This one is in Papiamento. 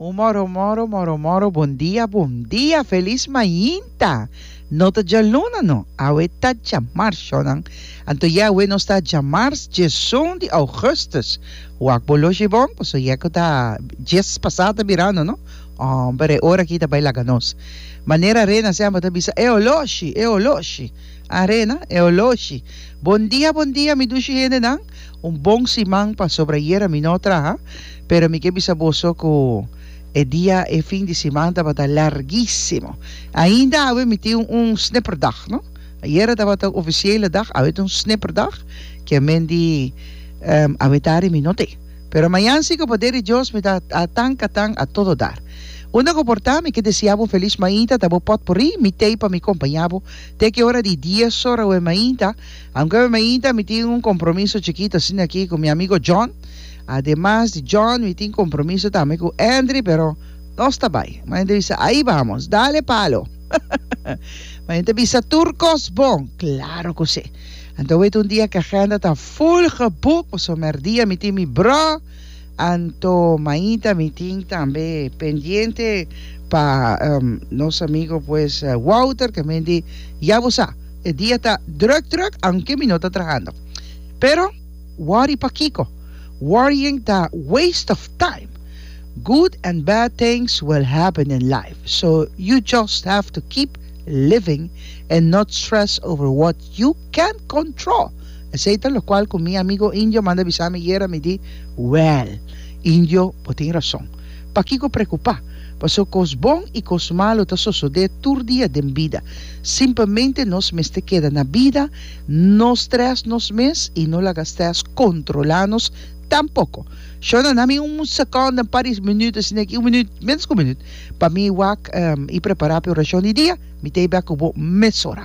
Un moro moro moro moro bon dia bon dia felis mainta no ta djaluna no awe ta djamars shonan anto ye awe nos ta djamars djesun di augustus wak bo loshi bon paso ye ku ta djes pasa ta mirando no homber e ora aki ta bai laga nos manera rena semper ta bisa eo loshi eo loshi a rena eo loshi bon dia bon dia mi dushi hende nan. Un bon siman pasobra ayera mi no traha, pero mi ke bisa boso ku e dia e fin di siman tabata largísimo. Ainda awe mi tin un snipperdag, no. Ayera tabata ofisiële dag, awe ta un snipperdag, ke men di awe tarde mi no te. Pero mañan si ku poder di Dios mi ta atan katan a todo dar. Unda ku por ta, mi ke desea bo felis mainta ta bo potpurrí, mi tei pa mi kompañá bo te ki ora di dies ora awe mainta, Aunke mi mainta mi tin un compromiso chikito asina aki cu mi amigo John, ademas di John mi tin compromiso tambe cu Endry, pero nos ta bay. Ma Endry bisa, Ahi vamos, dale palo! Ma yen ta bisa, Tur cos bon! Claro cu si! Anto wet un dia cu agenda ta full geboek, pasobra merdia mi tin mi bro, Anto Maida mi tin tambe pendiente pa nos amigo pues Wouter ke men di ya bo sa e dia ta druk druk aunke mi no ta trahando pero worry pakiko worrying ta waste of time good and bad things will happen in life so you just have to keep living and not stress over what you Can't control. Esey ta locual cu mi amigo Indio manda bisa mi yera mi di, Well, Indio, bo tin rason. Pakico preocupa? Paso cos bon y cos malo ta sosode tur dia den bida. Simplemente nos mester keda na bida, no stress nos mes y no laga stress controla nos tampoco. Shona, nami un second, un par di minuut asina aki, un minuut, menos cu un minuut, pa mi wak y prepara pa e oracion di dia. Mi ta ey bek cu bo mesora.